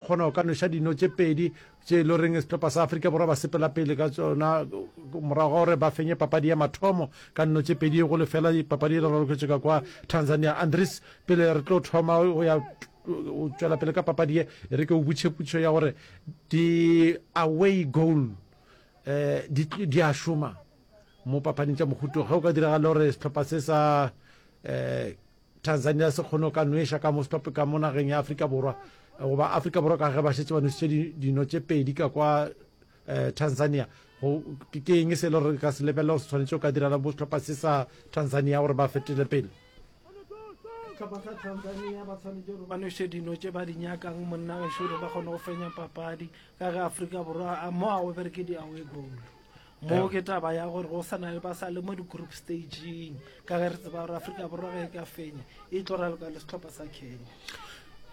Gona o ka nweša dino tše pedi tše e le goreng sehlopa sa Afrika Borwa ba sepela pele ka tšona morago ga gore ba fenye papadi ya mathomo ka nno tše pedi go lefela papadi e le raloketše ka kwa Tanzania. Andries, pele re tlo thoma go ya o tšwela pele ka papadi ye e re ke o butšhe putšo ya gore di-away goal um di a šoma mo papading tša mohuto ge o ka diragala gore sehlopha se sa um Tanzania se kgone go ka nweša ka mo stop ka mo nageng ya Afrika Borwa goba Afrika Borwa ka ge ba šetse ba nwešitše dino tše pedi ka kwa eh, Tanzania ke eng se le gore ka se lebelela gore se tshwanetse o ka direla bo setlhopha se sa Tanzania gore ba fetele pele setlhopha sa tanzania ba tshwanetse gore ba nwese dino tse ba di nyakang monna gašo gore ba kgone go fenya papadi ka ge aforika borwa mo a obereke di-away goal mo ke taba ya gore go sana le ba sa le mo di-group stageng ka ge re tseba gore aforika borwa ge e ka fenya e tlo raloka le setlhopha sa kenya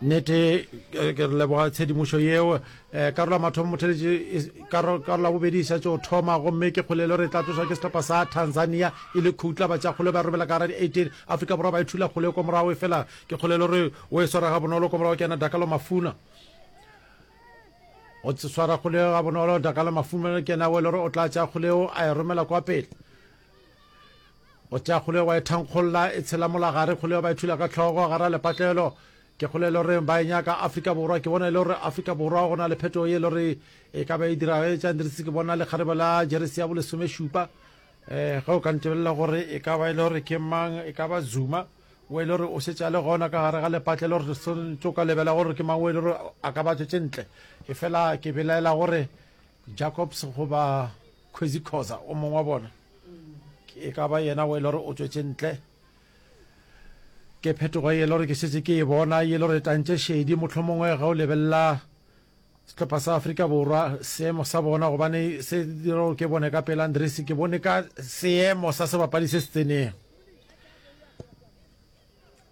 nete ke re leboga tshedimošo yeo um eh, karola mathomo motheletše karola bobedi e šatse o thoma gomme ke kgolelo re tla tlosa ke setlhopha sa tanzania e le khutla batša kgole ba robela ka gara di-eighteen afrika borwa ba e thula kgole ko morago e fela ke kgolelo re o e swara ga bonolo ko morago ke yana dakalo mafuna o swara kgoleo ga bonolo dakala mafumelo ke yena o le gore o tla tša kgoleo a e romela kwa pele o tša kgoleo wa e thankgolola e tshela molagare kgoleo ba e thula ka tlhogo gara lepatlelo ke kgole e le gore ba e nyaka afrika borwa ke bona e le gore afrika borwa go na le phetogo ye e le gore e ka ba e dirago e tšang dirise ke bona lekgarebe la jeresi ya bolesomešupa um ge o ka ntebelela gore e ka ba e le gore ke mang e ka ba zuma O e le gore o šetše a le gona ka gare ga lepatlelo, re swanetše go ka lebela gore ke mang o e le gore a ka ba tšwetše ntle. Efela ke belaela gore Jacobs goba Kwezikhoza o mongwe wa bona e ka ba yena o e le gore o tšwetše ntle. Ke phetogo e le gore ke šetše ke e bona e le gore tantše šedi motlho mongwe ge o lebelela sehlopha sa Afrika Borwa seemo sa bona gobane se dira gore ke bone ka pela Andresi ke bone ka seemo sa sebapadi se se tseneng.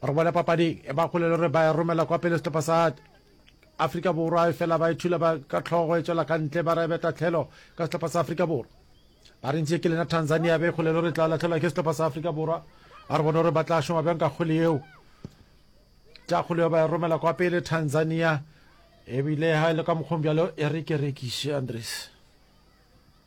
re bone papading e ba kgolelo re ba romela kwa pele setlhopha sa afrika borwa e fela ba ithula ba ka tlhogo e tswela ka ntle ba rebe tatlhelo ka setlhopha sa afrika borwa ba re ntse ke lena tanzania be kgolelo re tla latlhelwa ke setlhopha sa afrika borwa a re bone gore ba tla šoma bjang ka kgole eo tša kgole eo ba e romela kwa pele tanzania ebile ha e le ka mokgong bjalo e re ke rekiše andres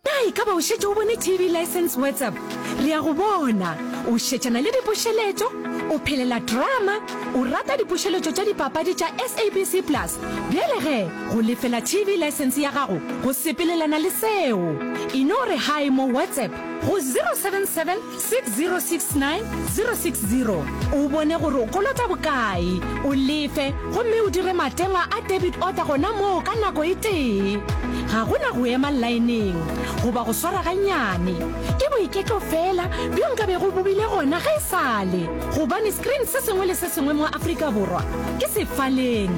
Na e ka ba o šetše o bone TV License WhatsApp? Re a go bona o šetšana le dipušeletšo, o phelela drama, o rata dipušeletšo tša dipapadi tša SABC Plus. Bjale ge go lefela TV License ya gago go sepelelana le seo, e no re hi mo WhatsApp go 077 6069 060 o bone gore o kolota bokae, o lefe gomme o dire matengwa a debit order gona moo ka nako e tee. Ga go na go ema laeneng goba go swara gannyane. Ke boiketlo feela bjo nka bego bo bile gona ge e sa le, gobane screen se sengwe le se sengwe mo Afrika Borwa ke sefaleng.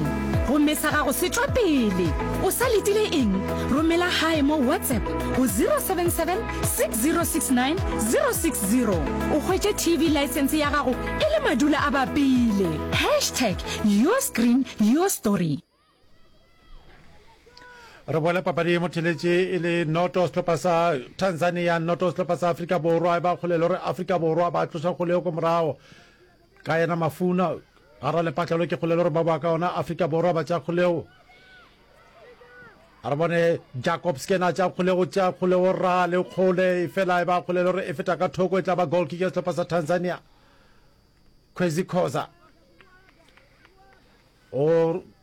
Gomme sa gago se tšwa pele. O sa letile eng? Romela gae mo WhatsApp go 077 6069 060 o hwetše tv license ya gago e le madula a bapile hashtag your screen your story re boele papadi mo theletše e le noto sehlopha sa tanzania noto sehlopha sa afrika borwa e ba kgolelo gore afrika borwa ba tloša kgoleo ko morago Ka yena Mafuna, ga ra lepatlelo ke kgolelo gore ba boa ka ona Afrika Borwa ba tša kgolego. A re bone Jacob Skena tša kgolego tša kgolego ra le kgole fela e ba kgolelo gore e feta ka thoko e tla ba goal kick ya sehlopha sa Tanzania. Kwezi Khoza o